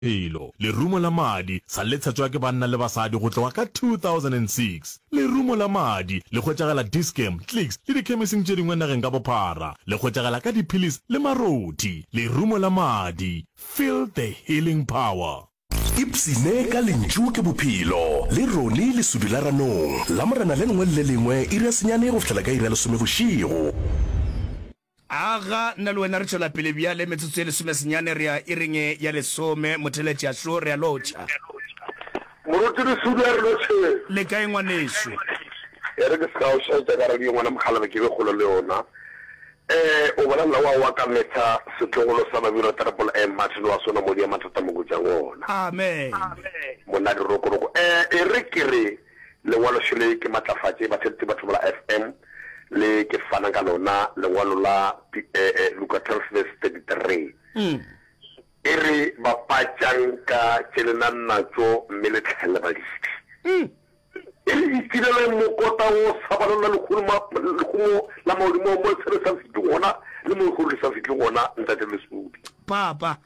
Bophelo. Lerumo la madi sa le tshetšwa ke banna le basadi go tloga ka 2006. Lerumo la madi le hwetšagela Dis-Chem, Clicks le dikhemising tše dingwe nageng ka bophara. Le hwetšagela ka diphillis le marothi. Lerumo la madi, feel the healing power. Ipshine ka Lentšu ke Bophelo le Ronnie Lesudu la Ranong, Lamorena le lengwe le le lengwe iri ya senyane go fihlela ka iri ya lesome bošego. Aga, nna le wena re tšwela pele bjale, metsotso e lesomesenyane, re a iring e ya lesome, motheeletši a šo, re a lotšha. Moruti Lesudi a re lotšheng. Le kae, ngwanešu? E re ke se ka go šaetša ka radio, ngwana mokgalabje, ke be kgole le yona. Ee, o bolelela wa wa ka metha, setlogolo sa Babirwa Terepolo, ee, Martin wa sona, modi ya mathata mo kojang ona. Amen. Monna Dirokoroko, ee, e re ke re. Lengwaloxo le ke matlafatše batheletši ba Thobela FM le ke fana ka lona, lengwalo la Luka 12 verse 33 e re, Bapatšang ka tše le nang natšo mme le hlahelle baledi. E re, Itireleng mokota wo o sa balelwa lehumo la maodimo mo le tshepe sa fihle gona le mo le go le sa fihle gona, Ntate Lesodi. Papa.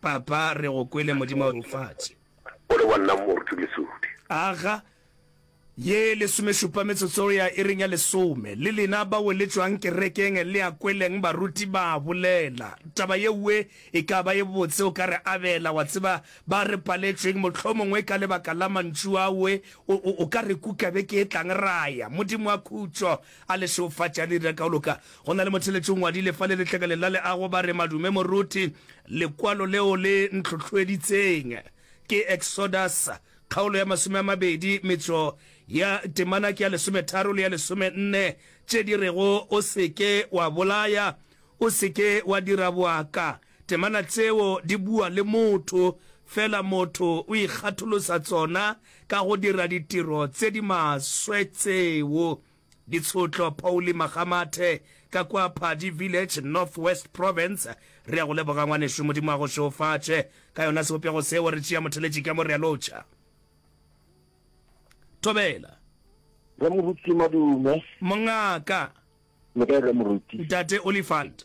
Papa, re go kwele Modimo wa lefatše. O le wa nna moruti Mesupi. Aga, ye lesomešupa metsotso go ya iring ya lesome. Le lena bao le tšwang kerekeng le ya kweleng baruti ba bolela. Taba yeoe e ka ba e botse o ka re abela, wa tseba, ba re paletšweng, mohlomongwe ka lebaka la mantšu aoe, o, o, o ka re kuka beke e tlang ra ya. Modimo wa khutšo! A le šeufatša le dira ka go loka. Go na le motheletši o ngwadile fa le letlakaleng la leago, ba re, Madume moruti, lekwalo leo le ntlhohloeditseng ke Exodus, kgaolo ya masome a mabedi, metšo ya temana ke ya lesometharo le ya lesomenne, tše di rego, O se ke wa bolaya, o se ke wa dira boaka, Temana tseo di bua le motho, fela motho o ikgatholosa tsona ka go dira ditiro tse di maswe tseo. Ditshotlo, Pauli Makgamathe, ka kwa Phadi Village, North West Province. Re ya go leboga ngwanešu, Modimo a go šeofatše ka yona sebopego seo, re tšea motheletši ka mo re a lotšha. Thobela. Rre Moruti, madume. Mongaka. Le kae, Rre Moruti? Ntate Olifant.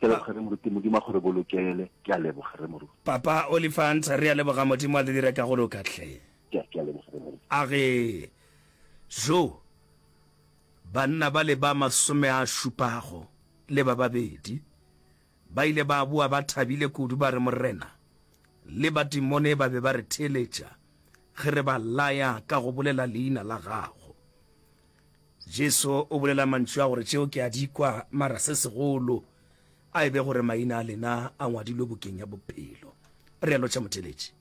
ke leboge re moruti modimo a gore bolokele ke a leboga re moruti papa olifant re a leboga modimo a le dira ka go loka tlhe a re jo banna ba le ba masome a šupago le ba babedi ba ile ba boa ba thabile kudu ba re morena le batimone ba be ba re theeletša ge re ba laya ka go bolela leina la gago Jesu o bolela mantšu a gore tšeo ke a di kwa, mara se segolo a e be gore maina a lena a ngwadilwe bukeng ya bophelo. Realo tša motheletši.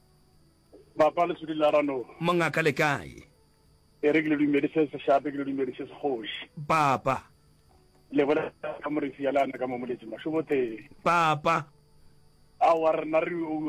Papa le sudi la rano. Mongaka le kae? E re ke le dumedi se se shape ke le dumedi se se kgoši. Papa. Le bona ka morefi ya le ana ka mo moletsi mašobothe. Papa. Aowa rena re o